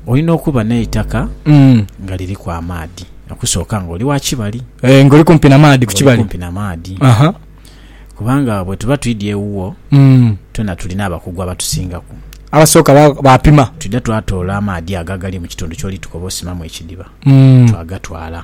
Olina okuba n'eitaka nga liriku amaadhi okusooka nga oli wa kibali. Eeh nga oli kumpi na maadhi ku Oli kibali. kumpi na maadhi. Aha. Kubanga bwetuba twidha ewuwo, Mm. twena tulina abakugu abatusingaku. Abasooka ba- baapima. Twidha twatoola amaadhi ago agali mu kitundu ky'oli tukoba osimamu ekidiba, Mm. twagatwala.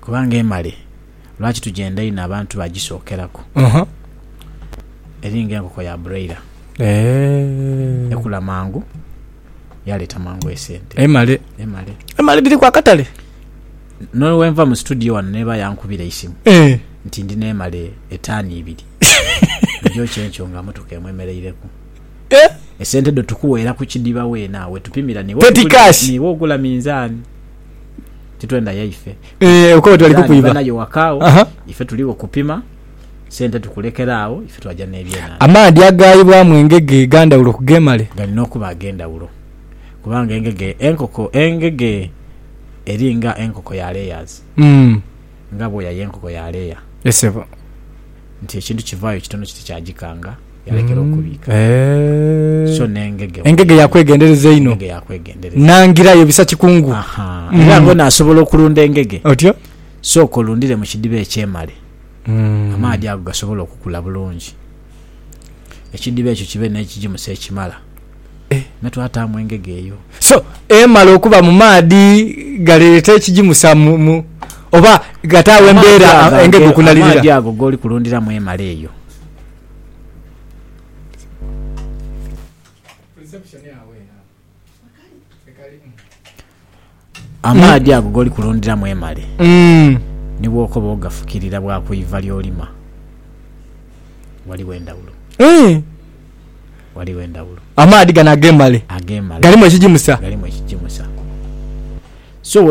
Kubanga emale lwaki tugyenda inho abantu bagisookeraku eri ng'enkoko ya broiler, ekula mangu yaleeta mangu esente. Emale. Emale. Emale dhiriku akatale. N'owenva mu situdiyo wano n'eba yankubira eisimu nti ndina emale etaani ibiri ogyokye enkyo nga motoka emu emereireku. Esente dho tukuweera ku kidiba weena we tupimira niwo ogula minzaani. titwenda yaife eh, okuba tubali kukwiba nayo wakaawo ife tuliwo kupima sente tukulekera awo ife twaja n'ebyenanda. Amaadhi agaayibwamu engege ga ndhawulo ku g'emale? Galina okuba ag'endhawulo kubanga engege enkoko engege eri nga enkoko ya layers. nga bwoya y'enkoko ya leya. Ye sebo. Nti ekintu kivaayo kitono kiti kyagikanga, yalekera mm. okubiika. Eh. So n'engege. Engege yakwegendereza einho. Engege yakwegendereza. Nangirayo bisa kikungu. Aha. Mm. Era ngona asobola okulunda engege. Otyo? Sooka olundire mu kidiba ekyemale. Mm. Amaadhi ago gasobola okukula bulungi. Ekidiba ekyo kibe n'ekigimusa ekimala. Eh me twataamu engege eyo. So emala okuba mu maadhi galeeta ekigimusa mu mu oba gataagho embeera engege okunalirira? Amaadhi ago g'oli kulundiramu emala eyo. Amaadhi ago g'oli kulundiramu emale, ni bw'okoba ogafukirira bwa ku iva ly'olima, ghaligho endhawulo. Ghaligho endhawulo. Amaadhi gano ag'emale galimu ekigimusa. Galimu ekigimusa. So,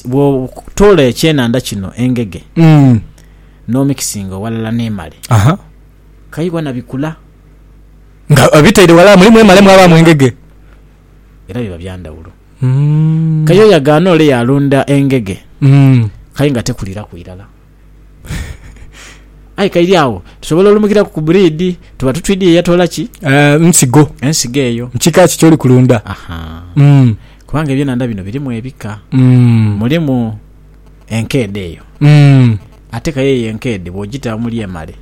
bw'otoola ekyenhandha kino engege n'omikisinga ghalala n'emale, kayi ghona bikula. Nga obitaire ghalala mulimu emale mwabaamu engege. era biba bya ndhawulo. Kaye oyo agaana ole yaalunda engege kaye nga tekuliiraku irala. Aye kairi agho tusobola olumukiraku ku buriidi, tuba tutwidhi ye yatoola ki? Nsigo. Ensigo eyo. Kika ki ky'oli kulunda? Aha. Kubanga eby'enhandha bino birimu ebika. Mulimu. enkeedhe eyo. Ate kayo eyo enkeedhe bw'ogita omuli emale,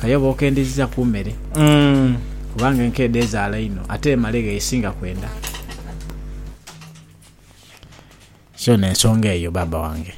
kayo oba okendeziza ku mere kubanga enkeedhe ezaala inho ate emale gh'esinga kwenda. So n'ensonga eyo baaba wange.